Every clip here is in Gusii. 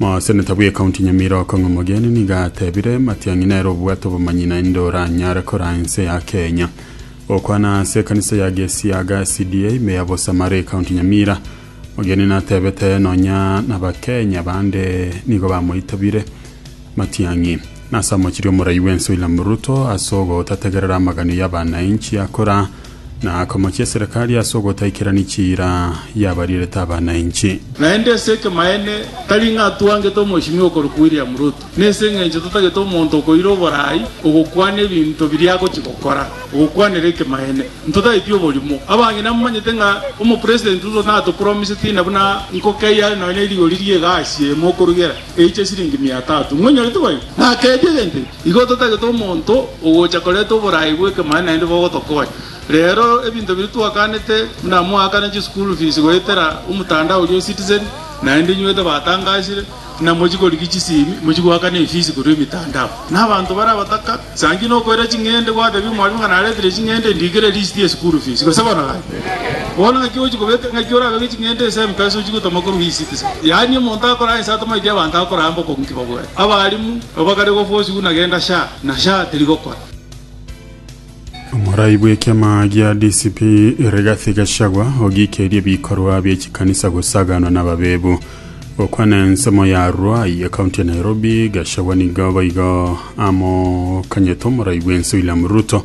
Moseneta bw'ecounty Nyamira Okong'o Mogeni nigo atebire Matiang'i nere obwate obomanyi naende oranyare koraa ense ya Kenya. Gokwana ase ekanisa ya Gesiaga SDA ime ya Bosamara ecounty Nyamira, Mogeni natebete nonya nabakenya bande nigo bamoitabire Matiang'i nase amochirie omorai bw'ense William Ruto ase ogotategerera amaganio y'abanainchi akoraa Na akamochia eserekari ase ogotaikerania chiira y'abarierete abana inche. Naende ase ekemaene tari ng'a twangete omochimi okorokwa William Ruto, na ase engencho totagete omonto okoira oboraai ogokwana ebinto biria agochia gokora, ogokwanera ekemaene. Ntotageti oborimo. Abang'ina momanyete ng'a Omopresident Ruto natopromisetie ina buna nkokeyare nonya erigori ri'egasi emo okorugera eiche siringi mia tatu. Mwenyorete boigo? Nakeebie egento eke. Igo totagete omonto ogocha koreta oboraai bw'ekemanyi naende bogotokonya. Reero ebinto biria twakanete buna moakane chischool fees goetera omotandao oria o Citizen naende inywete batangasire buna mochikorigia chisimi mochigoakana efees korwa emitandao. Na abanto bare abataka sanki nokoira ching'ende gwatebia omwarimu ng'a naretire ching'ende ndikere list ye school fees gose bono gaki. Bono ng'aki ogochi kobeka ng'aki orabeke ching'ende ase Mpesa ochigotoma korwa E-Citizen. Yaani omonto akoraa ense atamaeti abanto akoraa mbokongu ki babwate. Abarimu nabo bakare gofwa osigu na genda sha na sha tirigokora. Omorai bw'ekiama gia DCP Rigathi Gachagua ogiikerie ebikorwa bie chikanisa gosaganwa nababebu. Gokwana ensemo ya Ruai ekaunti ya Nairobi, Gachagua nigo boigo amokanyete omorai bwense William Ruto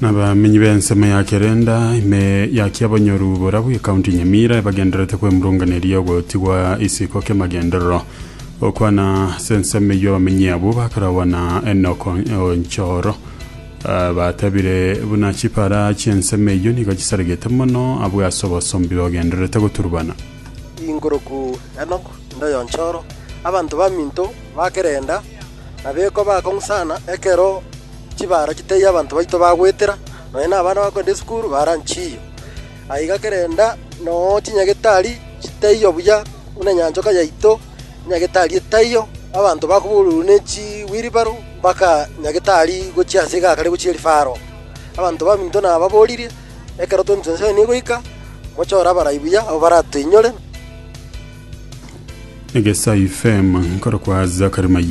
Nabamenyi b'ensemo ya Kerenda, ime ya kiabonyoru borabu y'Ekaunti Nyamira, ebagendererete kwemurunganeria ogotigwa isiko ki'amagenderero. Gokwana ase ensemo eyio abamenyi abwo bakarogwa na Enock Onchoro ah, batebire buna chipara chi'ensemo eyio nigo chisaregete mono abwo ase obosombi bagendererete goturubana. Inguru ku Enock Ndoyonchoro, abanto baminto ba Kerenda, Abekwa bakong'u sana ekero chibaaro chitaiyo abanto baito bagwetera, nonya nabana bagokenda esukuru baara nchiyo. Aiga kerenda noo chinyagetari chitaiyo buya buna enyanchoka yaito, enyagetari etaiyo, abanto bakoboororwa ne chiwilibaro mpaka nyagetari gochia ase egaka ria gochia rifaro. Abanto baminto nababoorire, ekero 2027 egoika, mochore abarai buya abwo baratoinyore. Egesaife, emankorokwa Zachary Mayega.